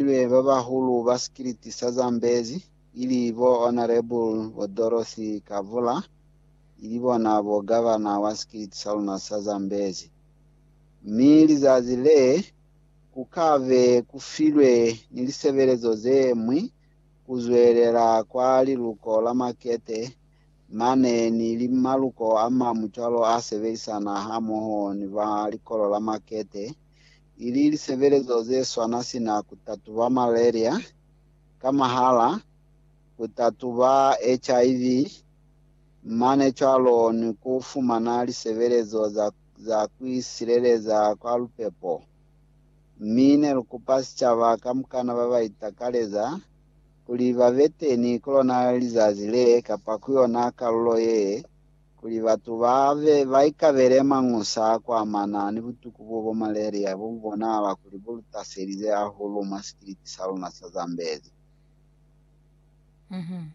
Ibe ba bahulu ba sikiliti sa Zambezi, ili bo Honourable bo Dorothy Kavula, ili bona bo Governor wa sikiliti sa luna sa Zambezi. Mi lizazi le, ku ka be ku filwe ni lisebelezo ze ñwi ku zwelela kwa liluko la makete mane ni li maluko a mañwi cwalo a sebelisana hamoho ni ba likolo la makete ili lisebelezo zeswana sina kutatuba malaria ka mahala, kutatuba HIV, mane cwalo ni kufumana lisebelezo za za kuisileleza kwa lupepo. Mi nelukupa sicaba kamukana babaitakaleza kuli babeteni kulona lizazi le kapa kuyona kalulo ye, kuli batu ba be ba ikabele mañusa a ku amana ni butuku bo bo malaria bo bu bonahala kuli bo lu taselize hahulu mwa sikiliti sa luna sa Zambezi. Mhm.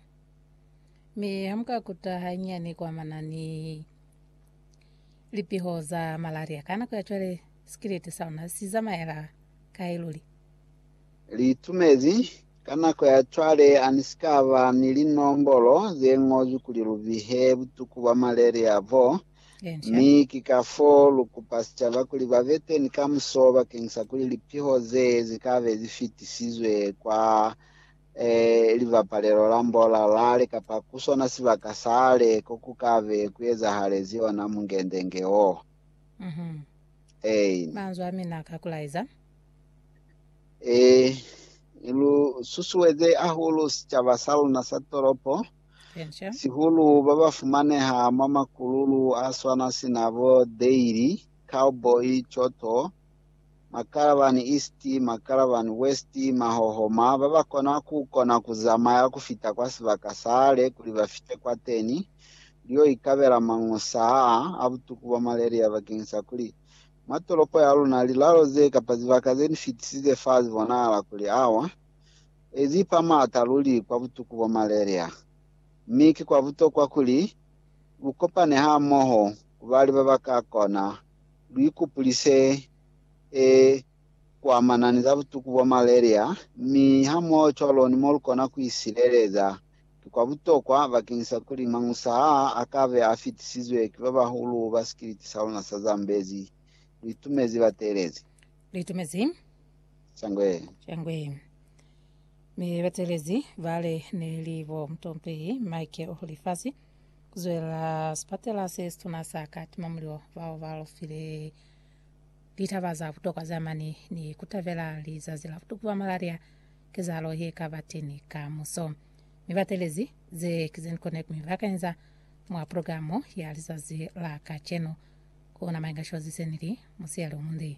Mi ha mu ka kuta hanyinyani ku amana ni lipiho za malaria ka nako ya cwale, sikiliti sa luna si zamaela kai luli? Liitumezi, Ka nako ya cwale ani si ka ba ni linombolo ze ñozwi kuli lu bihe butuku bwa maleli a bo, mi ki ka fo lu kupa sicaba kuli ba be teni ka muso bakeng sa kuli lipiho ze zi ka be zi fitisizwe kwa eh, libapalelo la mbola lale kapa ku sona sibaka sale ko ku ka be ku ezahalezi ona mungendenge wo. Ein. Manzwi a mina ka ku laiza. Eh, ni lu susueze ahulu sicaba sa luna sa tolopo, Enca. sihulu ba ba fumaneha mwa makululu a swana sina bo Dairy, Cowboy, Choto, Makalabani East, Makalabani West, Mahohoma, ba ba kona ku kona ku zamaya ku fita kwa sibaka sale kuli ba fite kwateni, lu yo ikabela mañosa aa a butuku bwa malaria bakeñisa kuli Mwa tolopo ya luna, lilalo ze kapa zibaka ze ni fitisize fa zi bonahala kuli awa e zi pa m'ata luli kwa butuku bwa malaria. Mi ki kwa butokwa kuli lu kopane hamoho ku bali ba ba ka kona lu ikupulise e kuamana ni za butuku bwa malaria mi hamoho cwalo ni mo lu kona ku isileleza Ki kwa butokwa bakeng sa kuli mañusa aa a ka be a fitisizwe ki ba bahulu ba sikiliti sa luna sa Zambezi. Lu itumezi bateelezi? Lu itumezi? Shangwe. Shangwe. Mi bateelezi ba li ne li bo mutompehi Mike o lifasi ku zwela sipatela se situna sa Katima Mulilo bao ba lofile Litaba za butokwa za mane ni kutabela lizazi la kutukuba malaria kezahalo ye kaba teñi ka muso, mi batelezi ze ki ze nikone ku mi bakanyiza mwa programo ya lizazi la kacenu. Ku na maingashozi se ni li, Musiyali omunde.